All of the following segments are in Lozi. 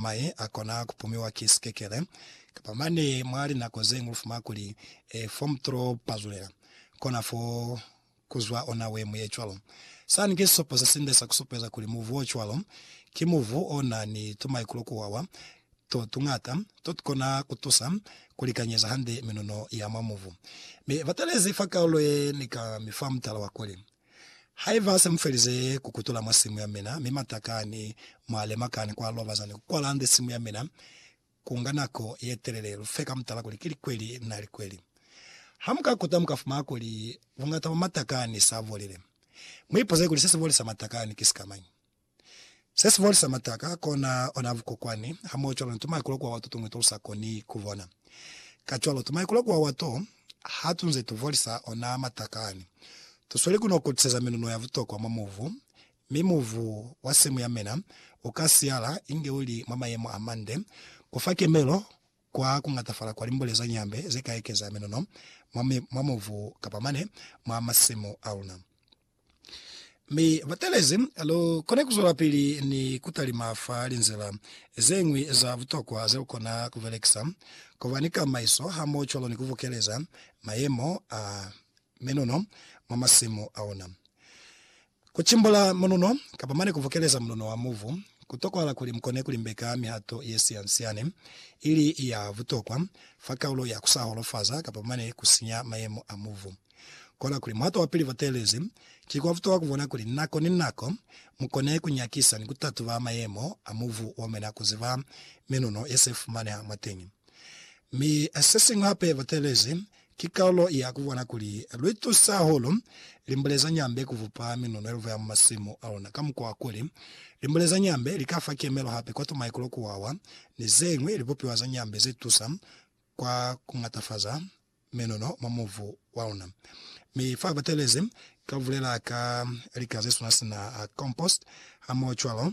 maye a kona ku pumiwa ki sikekele, kapa mane mwa linako ze ñwi lu fuma kuli, e, fo mu t'o pazulela, kona fo ku zwa ona we mu ye cwalo. Sani ki sisopo se sinde sa ku supeza kuli muvu o cwalo, ki muvu o na ni tumaikulo ku wawa to tuñata, to tu kona ku tusa ku likanyeza hande minuno ya mwa muvu. Mi batelezi fa kaulo ye ni ka mi fa mutala wa kuli, Haiba ha se mu felize ku kutula mwa simu ya mina, mi matakani mwa lema kani kwa loba zani ku kwala nde simu ya mina, ku nga nako ye telele. Lu fe ka mutala kuli ki likweli na likweli. Ha mu ka kuta, mu ka fumana kuli buñata bwa matakani sa bolile. Mu ipuze kuli se si bolisa matakani ki sikamañi. Se si folisa mataka kona ona vukokwani hamoho cwalo ni tumaikulo kuwawa to tuñwi to lu sa koni ku bona. Kacwalo, tumaikulo kuwawa to, ha tu nze tu folisa ona mataka ani, tu sweli ku no kutiseza minuno ya butokwa mwa mubu, mi mubu wa semu ya mina u ka siyala inge u li mwa mayemo a mande ku fa kemelo Kwa kungatafala kwa limbo lezo nyambe ze ka ekeza menono mwa, mwa mubu kapa mane mwa masimu a luna. Mi batelezi lu kona kuzwelapili ni kutalima fa linzila zeñwi za butokwa ze lu kona kubelekisa, kuba ni kamaiso hamoho cwalo ni kubukeleza mayemo a menono mwa masimu a luna. Ku cimbula mununo, kapa mane ku vukeleza mununo wa muvu, ku tokwahala kuli mu kone ku limbeka mihato ye sian-siani ili ya butokwa fa kaulo ya ku sa holofaza kapa mane ku sinya mayemo a muvu. Kona kuli muhato wa pili bateelezi ki kwa butokwa ku bona kuli nako ni nako mu kone ku nyakisa ni ku tatuba mayemo a muvu wa mina ku ziba minuno ye se fumaneha mwateñi. Mi se siñwi hape, bateelezi Ki kalulo ya ku bona kuli lwi tusa hahulu limbule za nyambe ku bupa minunelvo ya mwa masimu a luna ka mukwa wa kuli, limbule za nyambe li ka fa kemelo hape kwa tumaikulo, ku wawa, ni ze ñwi libupiwa za nyambe ze tusa kwa ku ñatafaza minuno mwa mubu wa luna. Mi fa batelezi, ka bulela ka lika ze swana sina compost, hamohocwalo,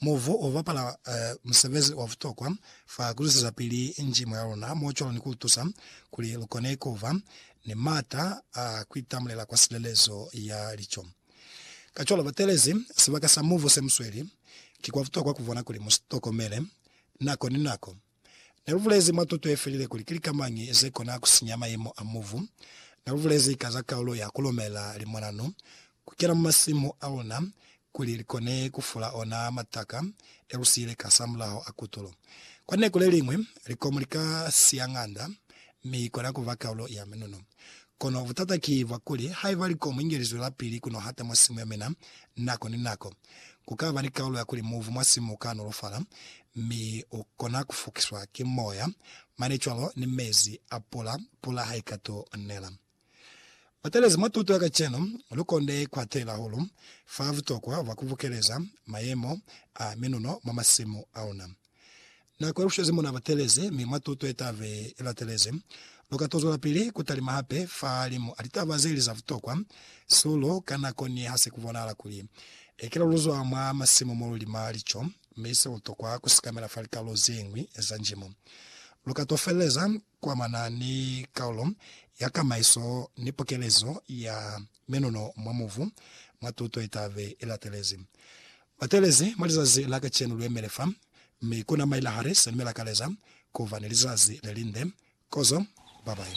Muvu u bapala musebezi wa butokwa fa ku zwezezapili njimo ya luna mwa cwalo ni ku lu tusa kuli lu kone ku ba ni m'ata a ku itamulela kwa silelezo ya lico. Kacwalo, batelezi sibaka sa muvu se mu sweli, ki kwa butokwa ku bona kuli mu si tokomele nako ni nako. Ne lu bulezi mwa tuto ye felile kuli ki lika mañi ze kona ku sinya mayemo a mubu. Ne lu bulezi ka za kaulo ya ku lumela limwanano ku kena mwa masimu a luna kuli li kone ku fula ona mataka e lu siile kasamulaho a kutulo. Kwa linako le liñwi, likomu li ka siya ng'anda mi kona ku ba kaulo ya minuno. Kono butata ki bwa kuli, haiba likomo inge li zwelapili ku nohata mwa simu ya mina nako ni nako, ku ka ba ni kaulo ya kuli muuvu mwa simu u ka nolofala, mi u kona ku fukiswa ki moya, mane cwalo ni mezi a pula, pula ha i ka t'o nela. Batelezi mwa tuto ya kacenu, lu konde ku hatelela hahulu fa butokwa bwa ku bukeleza mayemo a minuno mwa masimu a luna. Na kwelushezi muna batelezi, mi mwa tuto ye tabe i latelezi, lu ka to zwelapili ku talima hape fa limu a litaba ze li za butokwa sulu ka nako ni ha se ku bonahala kuli ekela lu zwa mwa masimu mo lu lima lico mi se lu tokwa ku sikamela fa likalulo ze ñwi za njimo. Lu ka to feleleza ku amana ni kaulo ya kamaiso ni pokelezo ya menono mwa mubu mwa tuto ye tabe i latelezi. Batelezi, Mwa lizazi la kacenu luemele fa, mi kuna mailahari sani mi lakaleza kuba ni lizazi lelinde. Kozo, babayi.